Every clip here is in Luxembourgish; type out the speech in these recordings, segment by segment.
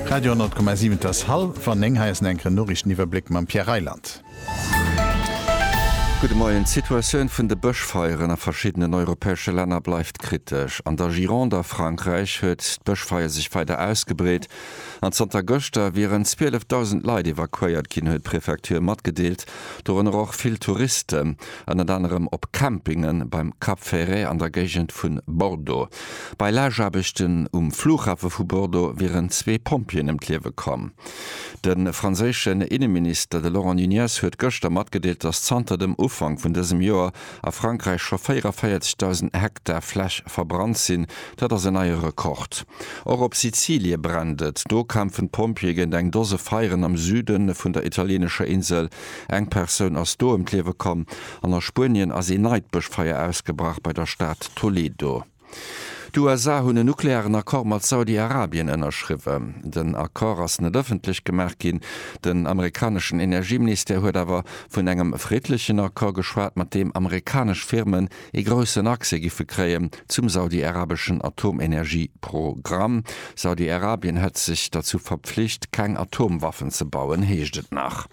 Radio 10,7 Et ass hallwer 9, hei ass en enkeren Noriichteniwwerbléck mam Pierre Reyland. Gudde Moien. D'Situatioun vun de Bëschfeieren a verschiddenen europäesche Länner bleift kritesch. An der Gironde a Frankräich huet d'Bëschfeier sech weider ausgebreet an zanter gëschter wieren 12.000 Leit evakuéiert ginn, huet d'Prefecture matgedeelt. dorënner och vill Touristen, ënnert anerem op Campinge beim Cap Ferret an der Géigend vu Bordeaux. Bei Lageaarbechten um Flughafe vu Bordeaux wieren zwee Pompjeeën ëm d'Liewe komm. De franséischen Inneminister, de Laurent Nunez, huet gëschter matgedeelt, datt zanter dem Ufank vun dësem Joer a Frankräich scho 44.000 Hektar Fläch verbrannt sinn. Dat ass en neie Rekord. Och op Sizilie brennt et. Do kämpfen d'Pompjeeë géint eng Dose Feieren am Süde vun der italieenescher Insel. Eng Persoun ass do ëm d'Liewe komm. An a Spuenien ass ee neit Bëschfeier ausgebrach bei der Stad Toledo. D'USA hunn en nuklearen Accord mat Saudi-Arabien ënnerschriwwen. Den Accord ass net ëffentlech gemaach ginn. Den amerikaneschen Energieministère huet awer vun engem friddlechen Accord geschwat, mat deem amerikanesch Firmen ee groussen Accès giffe kréien zum saudi-arabeschen Atomenergieprogramm. Saudi-Arabien hätt sech derzou verpflicht, keng Atomwaffen ze bauen, heescht et nach.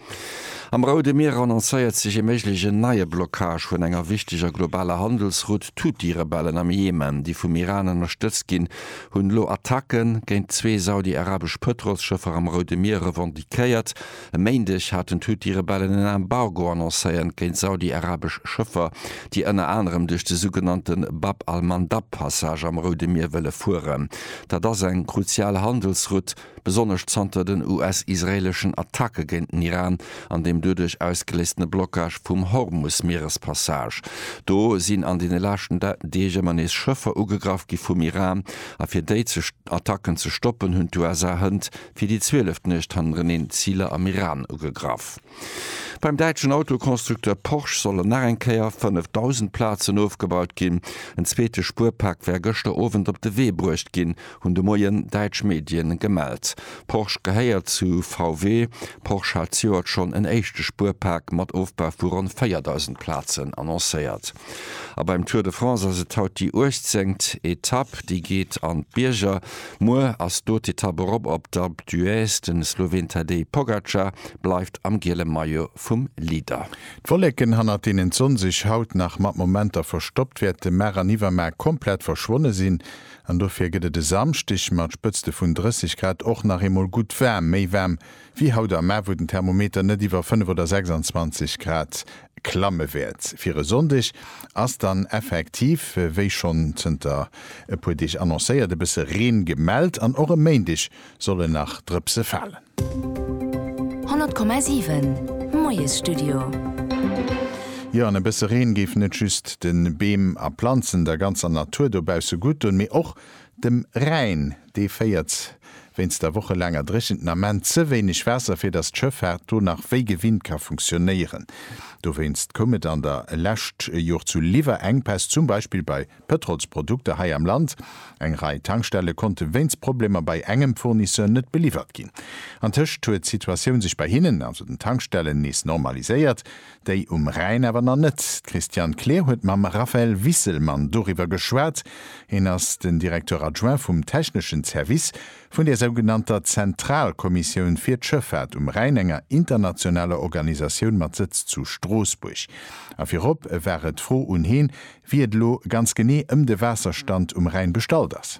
Am Roude Mier annoncéiert sech ee méiglegen neie Blockage vun enger wichteger globaler Handelsroute. D'Huthi-Rebellen am Jemen, déi vum Iran ënnerstëtzt ginn, hunn elo Attacke géint zwee saudi-arabesch Pëtrolsschëffer am Roude Mier revendiquéiert. E Méindeg haten d'Huthi-Rebellen en Embargo annoncéiert géint saudi-arabesch Schëffer, déi ënner anerem duerch de sougenannte Bab al-Mandab-Passage am Roude Mier wëlle fueren. Dat ass eng kruzial Handelsroute. besonnesch zanter den US-israeeleschen Attacke géint den Iran an deem doduerch ausgeléistene Blockage vum Hormus-Mierespassage. Do sinn an deene leschten Deeg ëmmer nees Schëffer ugegraff gi vum Iran, a fir déi Attacken ze stoppen, hunn d'USA hënt fir déi zwieleft Nuecht hannereneen Ziler am Iran ugegraff. Beim däitschen Autoconstructeur Porsche sollen nach eng Kéier 5.000 Plazen ofgebaut ginn. En zweete Spuerpak war gëschter Owend op de Wee bruecht ginn, hunn de Moien däitsch Medien gemellt. Porsche gehéiert zu VW. Porsche hat zejoert schonn en éischte Spuerpak mat Ofbau vu ronn 4.000 Plazen annoncéiert. A beim Tour de France ass et haut déi 18. Etapp. Déi geet an d'Bierger. Muer ass d'Hautetapp erop op d'Alpe d'Huez. De Sloween Tadej Pogacar bleift am giele Maillot vum Leader. D'Wolleken, hannert deenen d'Sonn sech haut nach mat Momenter verstoppt, wäerte mar an iwwermar komplett verschwonne sinn an dofir gëtt et e Samschdeg mat Spëtzte vun 30 Grad och nach eemol gutt waarm, méi waarm wéi haut am Mä, wou den Thermometer net iwwer 5 oder 26 Grad klamme wäert. Fir e Sonndeg ass dann effektiv, wéi schonn zënter e puer Deeg annoncéiert, e bësse Reen gemellt an och e Méindeg solle nach Drëpse falen. 100,7 Moiesstudio. Jo, an e bësse Reen géif net just de Beem a Planzen, der ganzer Natur dobausse gutt doen, mee och Dem Rhäin, dee féiert wéinst der wochelaanger Dréchent den Ament ze wéineg Waasser, fir datt d'Schëffaart do nach wéi gewinnt ka funktionéieren. Dowéinst koum et an der lescht Jor zu Liwwerenkpäss, zum Beispill bei Pëtrolsprodukter hei am Land. Eng Rei Tankstelle konnte wéinst Problemer bei engem Fournisseur net beliwwert ginn. Antëscht huet d'Situatioun sech bei hinnen, also den Tankstellen, nees normaliséiert. Déi um Rhäin awer nach net. D'Christiane Kleer huet mam Raphaël Wisselmann doriwwer geschwat. Hien ass den Directeur adjoint vum techneschen Service vun der sougenannter Zentralkommissioun fir d'Schëffaart um Rhäin, enger internationaler Organisatioun mat Sëtz zu Stroossbuerg. A virop war et d'Fro un heen, wéi et elo ganz genee ëm de Waasserstand um Rhäin bestallt ass.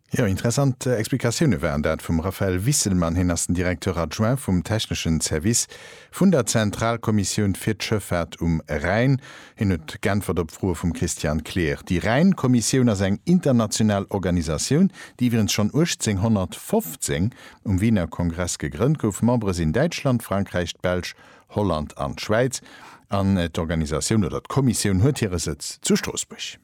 Jo, interessant Explikatioune waren dat vum Raphaël Wisselmann. Hien ass den Directeur adjoint vum techneschen Service vun der Zentralkommissioun fir d'Schëffaart um Rhäin. Hien huet geäntwert op Froe vum Christian Kleer. Déi Rhäin-Kommissioun ass eng international Organisatioun, déi iwwregens schonn 1815 um Wiener Kongress gegrënnt gouf. Membere sinn Däitschland, Frankräich, d'Belsch, Holland an d'Schwäiz. An d'Organisatioun oder d'Kommissioun huet hire Sëtz zu Stroossbuerg.